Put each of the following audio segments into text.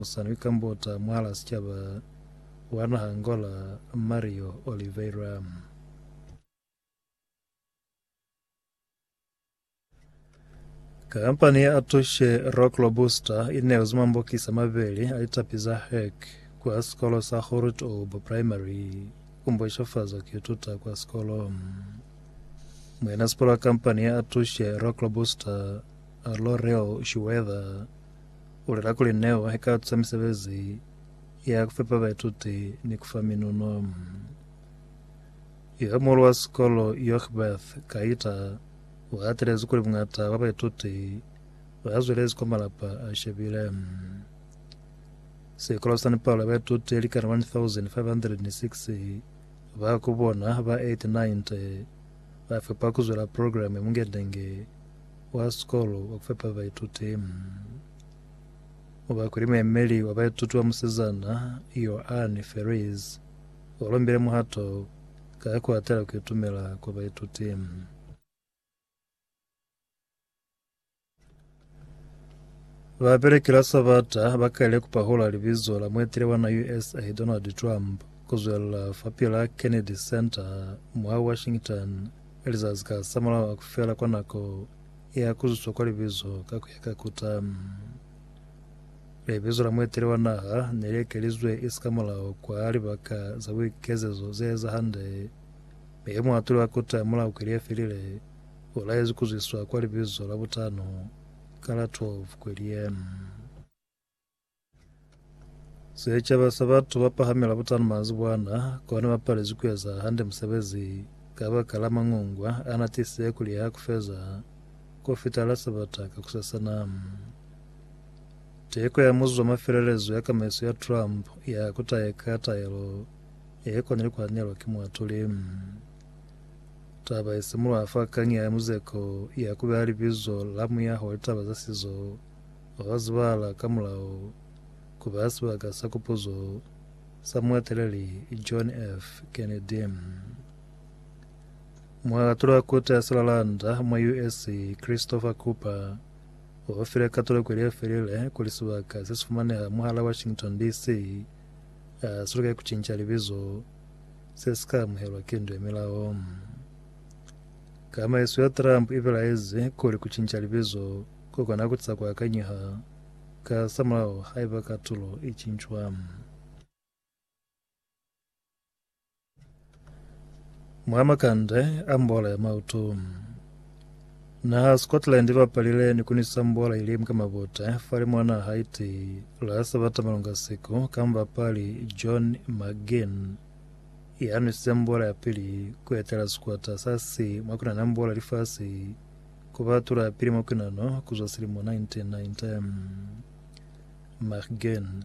Musani kambota mwala sicaba wa naha Angola Mario Oliveira. Kampani ya Atushe Rock Robusta ineezi mambokisi amabeli a litapi za hek kwa sikolo sa Groothoop Primary kumboshafaza kuituta kwa sikolo. Mwenasikolo wa kampani ya Atushe Rock Robusta, Laurel Shuwetha, U lela kuli neo i ka tusa misebezi ya ku fepa baituti ni ku fa minuno. Yoge muhulu wa sikolo Yochbeth Kaita u hatelezi kuli bungata bwa baituti ba zwelezi kwa malapa a shebile. Sikolo sani palo ya baituti likana 1506 ba ku bona ba 890 ba fepa ku zwela programme ya mungendenge wa sikolo wa ku fepa baituti o bakwe ni muemeli wa baituti wa musizana Ioanne Ferris o lombile muhato ka ku atela ku itumela kwa baituti. Babeleki la Sabata ba kaile ku pahula libizo la muetele wa na USA Donald Trump ku zwelela fapil'a Kennedy Center mwa Washington Lizazi ka za mulaho a ku fela kwa nako ya ku zuswa kwa libizo ka ku ya ka kuta, libizo la mueteli wa naha ne li ekelizwe isi ka mulaho kwa libaka za buikezezo ze eza hande, mi muatuli wa kuta mulaho kweli ye felile u laezwi ku zwiswa kwa libizo la butano ka la 12 kweli ye. Secaba sa batu ba pahamela butana manzibwana kona ba palezwi ku eza hande musebezi kabakala mangungwa ana tisize ku liha ku feza ku fita la sabata ka kusasana. Teko ya muzuzu wa mafelelezo ya kamaiso ya Trump ya ku taeka taelo ye kona ni ku hanelwa ki muatuli. Taba isimulwa fa kanya ya muzeko ya ku beha libizo la muyaho wa litaba za sizo Wazwala ka mulao ku ba sibaka sa kupuzo sa mueteleli John F. Kennedy. Mualatulwa ku Teaselalanda mwa US. Christopher Cooper o file katoloko ye felile kuli sibaka se si fumaneha mwahal'a Washington, DC. a si luke ku cinca libizo se si ka amuhelwa ki ndu ya milao. Kamaiso ya Trump i belaezi kuli ku cinca libizo Ku kona ku tisa ku akanyeha ka samulaho haiba katulo i cincwa. Mwa makande a mbola ya mautu, naha Scotland i bapalile ni ku nisa mbola ili mka mabute fale mwa naha iti la Sabata malunga siku ka mubapali John McGinn ya nwisize mbola ya pili ku etela sikwata sa C mwa ku nana mbola lifasi Ku ba tulapili mwa kwinano ku zwa silimo 1990, Mark Gane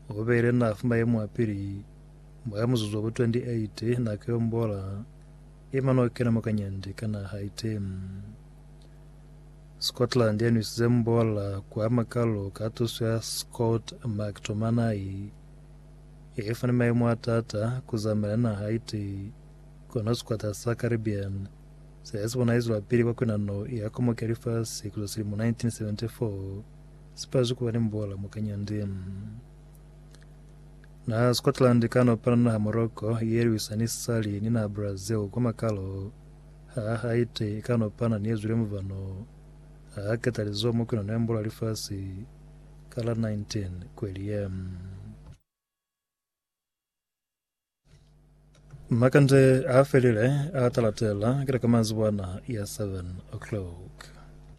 o beile nafu mwa ye mwa pili mwa muzuzu wa bu 28 nako ye ombola i mane o kena mwa kanyandi ka naha Haiti. Scotland ya nwisize mbola kwa makalo ka tuso ya Scott McTominay ye fani maimo a taata ku zamaela naha Haiti, kono sikwata sa Caribbean Sa ya sibona izwelapili kwa kwenano ya komoki ya lifasi kuza silimo 1974, sipazi kuba ni mbola mwa kanyandi. Naha Scotland kano pana naha Morocco ye lwisa ni sali ni naha Brazil kwa makalo. Ha Haiti kano pana ni ezwile mubano. Ha keta lizo mwa kwenano ya mbola lifasi kala 19 kweli ye. Makande a felile a talatela kila ka manzibwana ya 7 o'clock.